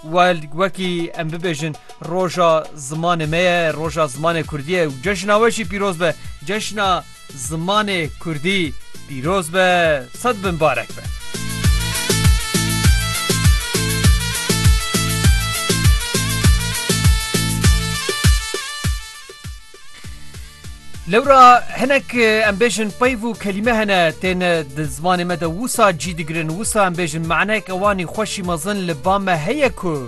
Wild wekî em bibêjin roja zimanê me ye, roja zimanê Kurdî ye û cejna we jî pîroz be. Cejna zimanê Kurdî pîroz be, sed bin barek be. Lewra hinek em bêjin peyv û kelîme hene tên di zimanê me de wisa cî digirin wisa em bêjin manek ewanî xweşî mezin li ba me heye ku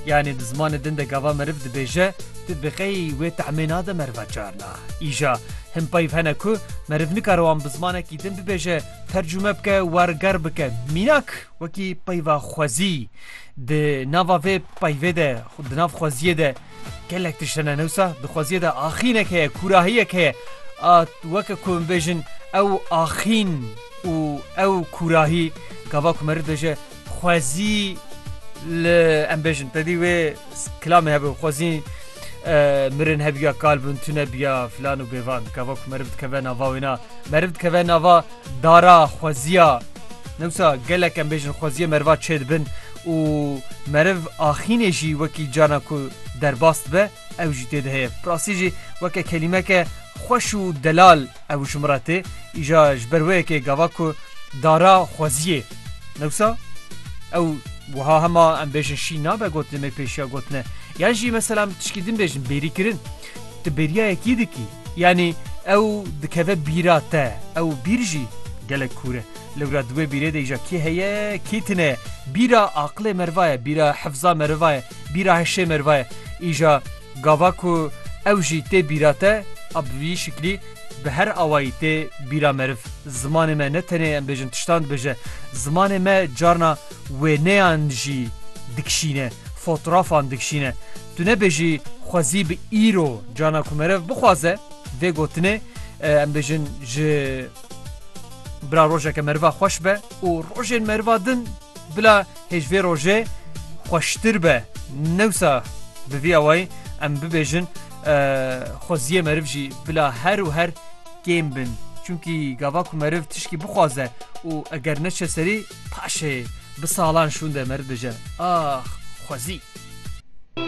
yanê di zimanê din de gava meriv dibêje tu bi qey wê tahmê nade meriva carna îja hin peyv hene ku meriv nikare wan bi zimanekî din bibêje tercûme bike werger bike mînak wekî peyva xwezî di nava vê peyvê de di nav xweziyê de Gelek tişt hene newsa di xweziyê de axînek heye, kûrahiyek heye. A weke ku em bêjin ew axîn û ew kûrahî gava ku meriv dije xwezî li em bêjin te dî wê kilamê hebe xwezî mirin hebiya kal bin tune biya filan û bêvan gava ku meriv dikeve nava wêna meriv dikeve nava Dara xweziya newsa gelek em bêjin xweziya meriva çê dibin û meriv axînê jî wekî carna ku derbas dibe ew jî tê de heye. Bi rastî jî weke kelîmeke xweş û delal ew ji min re tê. Îja ji ber wê yekê gava ku dara xweziyê newsa ew wiha hema em bêjin şîn nabe gotinê me pêşiya gotine yan jî mesela em tişkî din bêjin bêrîkirin. Tu bêriya yekî dikî. Yanî ew dikeve bîra te. Ew bîr jî gelek kûr e. Lewra di wê bîrê de îja kê heye, kê tune ye? Bîra aqilê meriva ye, bîra hefza meriva ye, bîra hişê meriva ye. Îja gava ku ew jî tê bîra te a bi vî şiklî bi her awayî tê bîra meriv. Zimanê me ne tenê em bêjin tiştan dibêje. Zimanê me carna. wêneyan jî dikişîne, fotrafan dikişîne. Tu nebêjî xwezî bi îro cana ku meriv bixwaze vê gotinê em bêjin ji bila rojeke meriva xweş be û rojên meriva din bila hêj vê rojê xweştir be. Newsa bi vî awayî em bibêjin xweziyê meriv jî bila her û her kêm bin. Çunkî gava ku meriv tişkî bixwaze û eger neçe serî Paşê bi salan şûnde merdije. Ax! Xwezî!